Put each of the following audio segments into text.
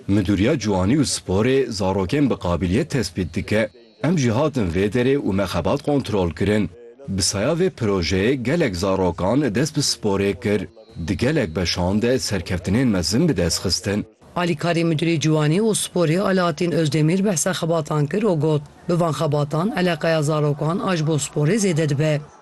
Midûriya Ciwanî û Sporê zarokên bi qabîliyet tespît dike. Em jî hatin vê derê û me xebat kontrol kirin. Bi saya vê projeyê gelek zarokan dest bi sporê kir. Di gelek beşan de serkeftinên mezin bi dest xistin. Alîkarê Midûrê Ciwanî û Sporê Alaattîn Ozdemîr behsa xebatan kir û got, Bi van xebatan eleqeya zarokan a ji bo sporê zêde dibe.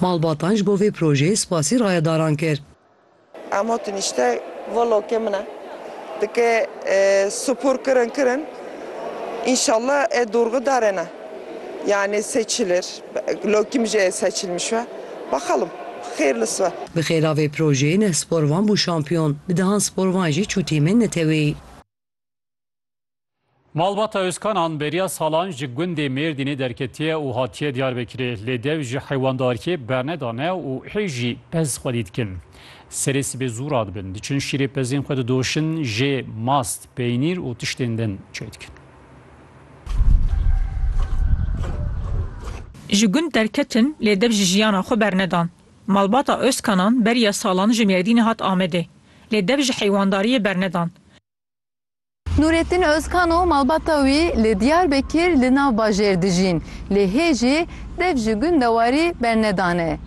Malbatan ji bo vê projeyê spasî rayedaran kir. Emo tu nîşte vlogê min e. Dike sipor kirin kirin înşallah ê dorgi darê ne. Yanî seçilir. Lokî min jî ê seçilmiş be. Bexelim. Xêrlis be. Bi xêra vê projeyê neh sporvan bû şampiyon. Bi dehan sporvan jî çû tîmên neteweyî. Malbata Özkanan beriya salan ji gundê Mêrdînê derketiye û hatiye Diyarbekirê. Lê dev ji heywandarkê bernedane û hê jî pez xwedî dikin. Serê sibê zû radibin, diçin şîrê pezên xwe didoşin, jê, mast, peynîr û tiştên din çê dikin. Ji gund derketin lê dev ji jiyana xwe bernedan. Malbata Özkanan beriya salan ji Mêrdînê hat Amedê. Lê dev ji heywandariyê bernedand. Nûretîn Ozkan û malbata wî li Diyarbekir li nav bajêr dijîn, lê hê jî dev ji gund de warî bernedane.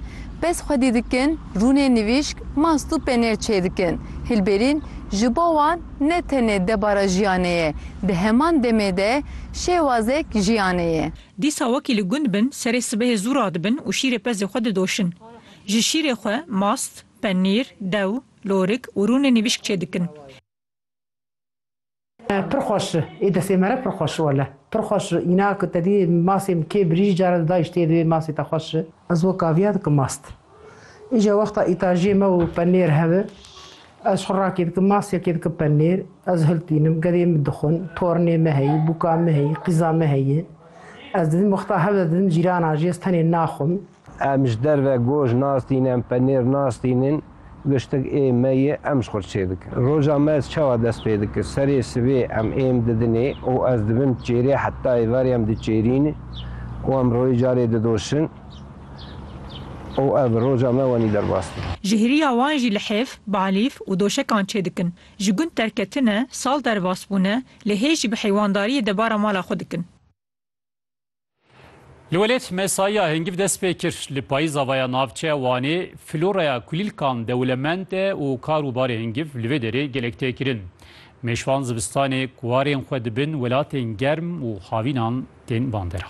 Pez xwedî dikin, rûnê nivîşk, mast û penêr çêdikin. Hilberîn ji bo wan ne tenê debara jiyanê ye, di heman demê de şêwazek jiyanê ye. Dîsa wekî li gund bin, serê sibehê zû radibin û şîrê pezê xwe didoşin. Ji şîrê xwe mast, penîr, dew, Lorik û rûnê nivîşk çê dikin. Pir xweş ê destê me re pir xweş wele pir xweş înak te dî masê min kê birî cara di dayîş tê divê masê te xweş. Ez wek aviya dikim mast. Îca wexta îtajiyê me û penêr hebe ez xwe rakê dikim masiyekê dikim penêr ez hiltînim gedê min dixwin tornê me heyî bûka me heyî qîza me heye ez didim wexta hebe didim cîran a jî ez tenê naxwim. Em ji derve goş nas dînin, em penêr nas dînin, giştik ê me ye, em ji xwe re çêdikin. Roja me ez çawa dest pê dikim? Serê sibê em êm didinê û ez dibim çêrê heta êvarê em diçêrîn û em royê carê didoşin û ev roja me wenî derbas tê. Ji hêriya wan jî lihêf, balîf û doşekan çêdikin. Ji gund derketine, sal derbas bûne, lê hê jî bi heywandariyê debara mala xwe dikin. Li welêt mesaiya hêngîv dest pê kir. Li payîza ve ya navçeya Wanê floraya kulîlkan dewlemend e û kar û barê hêngîv li vê derê gelek tê kirin. Mêşvan zivistanê kwarên xwe dibin welatên germ û havînan tên bandera.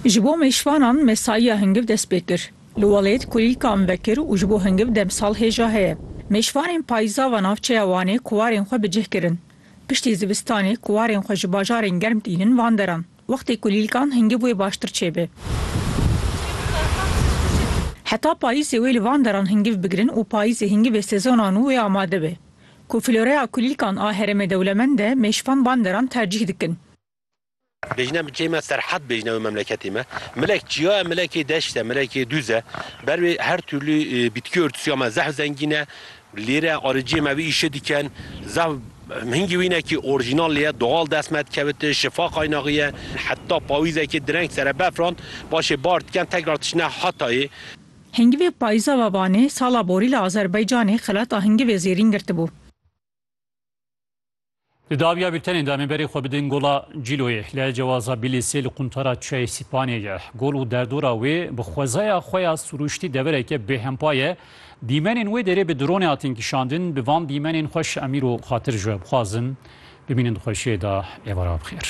Ji bo mêşvanan mesaiya hêngîv dest pê kir. Li welêt kulîlkan vekir û ji bo hêngîv demsal hêja heye. Mêşvanên payîza ve navçeya Wanê kwarên xwe bi cih kirin. Piştî zivistanê ku warên xwe ji bajarên germ tînin van deran, wextê ku lîlkan hingiv wê baştir çêbe. Heta payîzê wê li van deran hingiv bigirin û payîzê hingivê sezona nû wê amade be. Ku floreya kulîlkan a herêmê dewlemend e, mêşvan van deran tercîh dikin. Bêjine mi çême Serhat bêjine wê memleketê me. Milek çiya ye, milekê deşt e, milekê dûz e. Ber wê her tûrlî bîtkî örtûsiya me zehf zengîn e. Lêre ariciyê me vî îşê dikin. Zehf hingî wînekî orjînal lê ye, doğal dest me dikevit, şifa qaynaxî ye. Heta payîzekê direng sere befran, paşê bar dikin tekrar diçine Hatayê. Hingivê payîza ve vanê sala borî li Azerbaycanê xelata hingivê zêrîn girtibû. Di dawiya bîltenê de em ê berê xwe bidin gola Cîloyê. Li Cewaza Bîlîsê li quntara Çiyayê Sîpanê ye. Gol û derdora wê bi xwezaya xwe ya sirûştî devereke bêhempa ye. Dîmenên wê derê bi dronê hatin kişandin. Bi van dîmenên xweş Emîr û Xatir ji we bixwazim bimînin di xweşiyê de êvara bixêr.